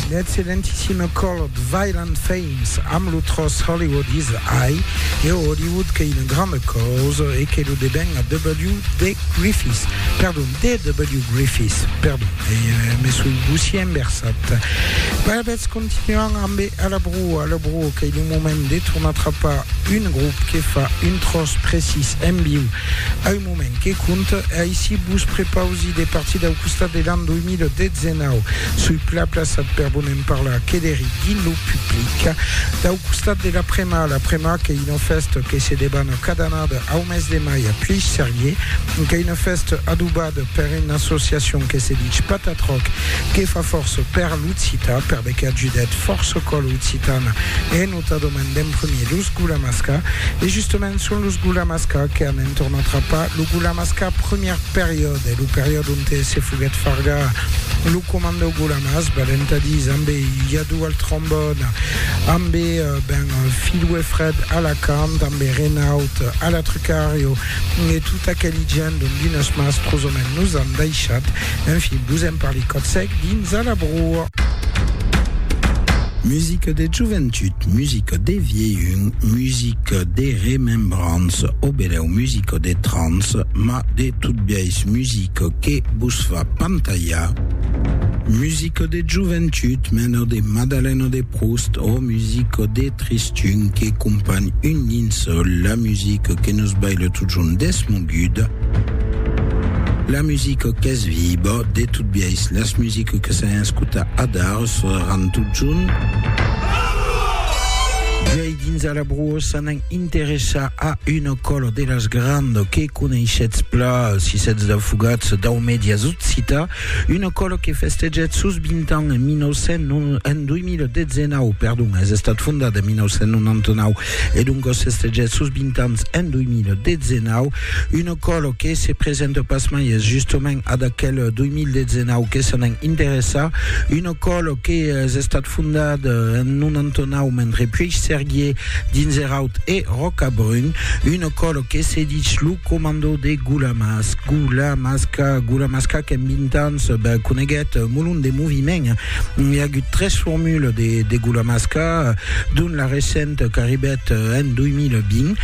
L'excellentissime colh Violent Femmes amb lo tròç Hollywood is High e o Hollywood qu'ei una granda causa e que lo deben a W. D. Griffith, perdon, D. W. Griffith, perdon, me soi bossier enversat. Alavetz, continuam ambe A la Brua, A la Brua qu'ei lo moment de tornar trapar un grop que fa un tròç precís en viu a un Moment que compte, aicí vos prepausi de partir dau costat de l'an 2019. Soi plaplaçat per bonem parlar que deri dins lo public. Dau costat de l'Aprema. L'Aprema qu'ei una fèsta que se debana cada annada au mes de mai a Pièix-Serrier. Qu'ei una fèsta adobada per una associacion que se dich Patatroc, que fa fòrça per l'occitan, perdeque ajudèt fòrça còla occitana en. Nòta, demandèm primier los Gulamasca e justament son los Gulamasca que an entorn atrapat lo Gulamasca primièr periòde, lo periòde onte se foguèt fargar lo comandau Gulamas, valentadís ambe Yadou al trombòn, ambe ben Filou e Fred a la cant, ambe Renaut a la trucario e tota aqueli gent dont dinos mas trosament nos an daishat. Enfin, vos en parli còth sec dins a la broa. Musica de joventut, musica de vielhun, musica de remembranç o benèu musica de trans, ma de tot biais musica que vos fa pantalhar. Musica de joventut, mena de Madalena de Proust o musica de tristun que companh un linçòl, la musica que nos baila totjorn desmoguda, la musica qu'es viba, de tot biais las musicas Que que se n'escuta adar se ran tot junt. Viei dins a la brossa n'an interessa a una cola de las grand que coneishetz pla si setz d'afogats dau medias occita una cola que festeget sos 20 ans en 1900 en 2019 perdon es estat fondat en 1999 e doncas festeget sos 20 ans en 2019 Una còlo que se presenta pas mai, es justament ad aquel 2019 que se n'en interessa, una còlo que es estat fondat en 99 mentre puèi serguié dins Eraut e Rocabrun, una còlo que se dich lo comando de Gulamasca, Gulamasca qu'en 20 ans coneguèt molon de moviment, I a agut tres formules de degulamasca, dont la recenta qu'arribèt en 2020.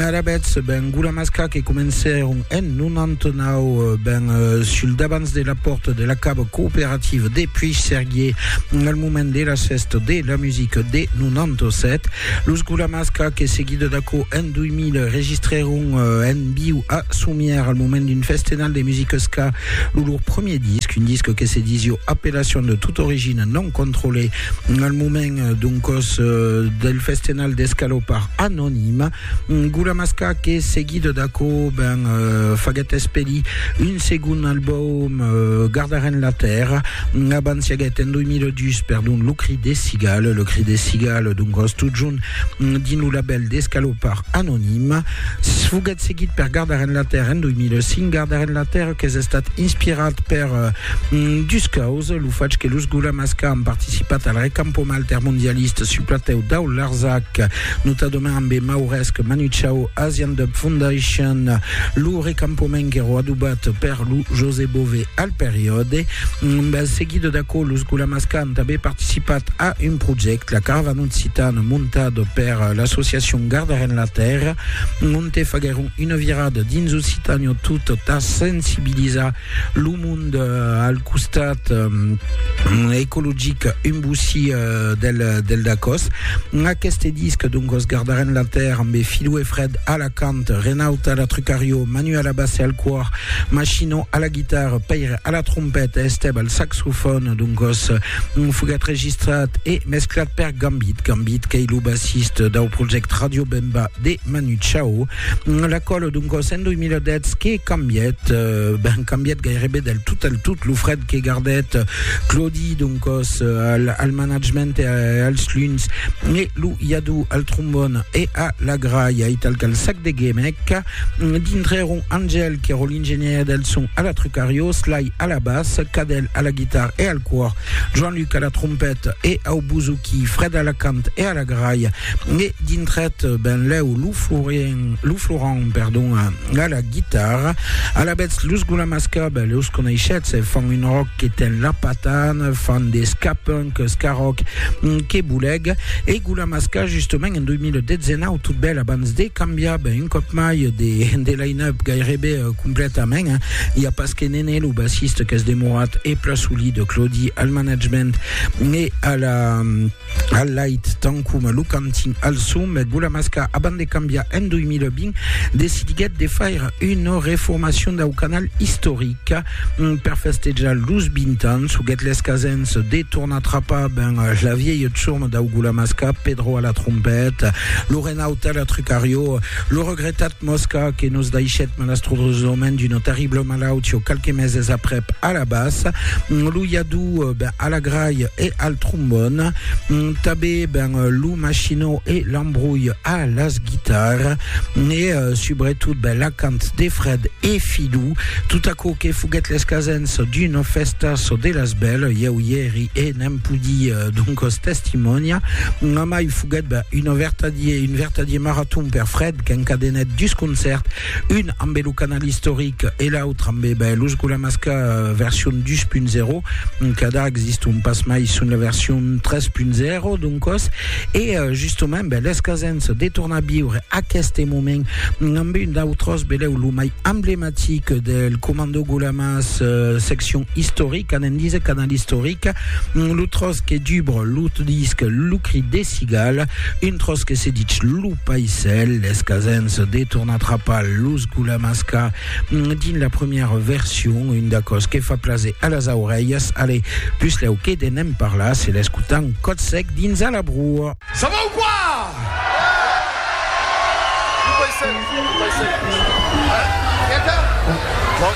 Alavetz, ben gulamasca que comencèron en 99, ben sul davants de la pòrta de la cava cooperativa de Puigcerguier, al moment de las fèstas de la musica de 97. Los gulamasca que seguida d'aquò en 2000 registrèron en viu a Somièr al moment d'un festenal de musica ska Lo lor premier disc, un disc que se disio Appellation de toute origine non contrôlée, al moment doncos del festenal d'escalopar anonime, Gulamasca que seguit d'aquò ben faguèt espedir un segon album Gardarem la Terra, abans i aguèt en 2002 perdon Le Cri des Cigales, Le Cri des Cigales doncos totjorn dins lo labèl d'escalopar anonime. Foguèt seguit per Gardar Enlatèrra en 2005, Gardar Enlatèrra qu'es estat inspirat per dus causes, lo fach que los Gulamas qu'a an participat al recampoma altermondialista sul platèu dau Larzac, notadament ambe Mauresc, Manu Chao, Asian Dub Foundation, lo recampament qu'èro adobat per lo José Bové al periòde. Seguit d'aquò, los Gulamas qu'a Tanben participat a un projèct, la Caravana Occitana, montat per l'associacion Gardarem la Tèrra, onte faguèron una virada dins Occitània tot tà sensibilizar lo mond al costat ecologic un bossí del, del Dacòs. Aqueste disc, doncos, Gardarem la Tèrra, ambe Filoe Fred a la cant, Renaud a la trucariò, Manuel Abasse al còr, Machino a la guitarra, guitarra, Pèire a la trompeta, Estèb al saxofòn, doncòs foguèt registrat e mesclat per Gambit. Gambit qu'ei lo bassist dau projèct Radio Bemba de Manu Chao. L'acòl, doncòs, en 2010 que cambièt, ben cambièt gairebe del tot al tot lo fred que gardèt Claudi, doncòs, al, al management e als luns, e lo Yadou al trombòn e a la gralha, e tal qu'al sac de gemec, Dintrèron Angèle, qu'èro l'ingenièr del son a la Trucario, Sly a la bas, Cadel a la guitar e al còr, Joan Luc a la trompèt e au bouzouki, Fred a la cant e a la gralha, e dintrèt benlèu lo Florien, lo Florent, perdon, a la guitarra. Alavetz, los Gulamas Cub, los coneishetz, fan un ròck que ten la patana, fan de ska-punk, ska-ròck, que boleg, e Gulamas K, justament, En 2019, tot bèl abans de cambiar ben, un còp mai de, de line-up gairebe uh, completament. Eh? Hi a pas que Nene, lo bassiste, qu'es demorat e pla solid, Claudi al management e a la, al light, tant com lo cantin al son, me Gulamasca, abans de cambiar en 2020, decidiguèt de faire una reformacion dau canal historic. Per festejar los 20 ans, huguèt les casens de tornar trapar ben la vièlha tsurma dau Gulamasca, Pedro a la trompeta, lo Renaut a la trucarió, lo regretat Mosca que nos daishèt malastrosament d'una terribla malautió qualques meses aprèp a la bassa, lo Yadou ben a la gralha e al trombòn, tanben ben lo Machinó e l'Ambrulh a las guitarras. ne euh, subretot ben, l'acant de Fred e Fidou, tot aquò que foguèt l'escasens d'una fèsta so de las belles, ieu i eri e n'èm pudi euh, doncos testimonia, mai foguèt ben, una vertadier, un vertadier maraton per Fred qu'encadenèt dus concèrt, un ambe lo canal istoric e l'autre ambe ben, los Gulamasca euh, version 2.0, cada existon pas mai son la version 3.0 doncos, E justement, ben, les casens de tornar viure aquest moment amb un d'autres, beleu, lo mai emblematic del Comando Gulamas, euh, seccion historica, anem dise canal historica, mm, lo tros que dubre lo disc Lo cri de cigala, un tros que se ditz Lo paisel, les casens de tornar trapar los Gulamas ca Dins la premièra version, un d'acò's que fa plaser a las aurelhas, ale, puslèu que de ne'n parlar, se l'escotam còth sec dins a la broa. Ça va ou quoi? Vous baissez, vous baissez. Hein? Quelqu'un? Non?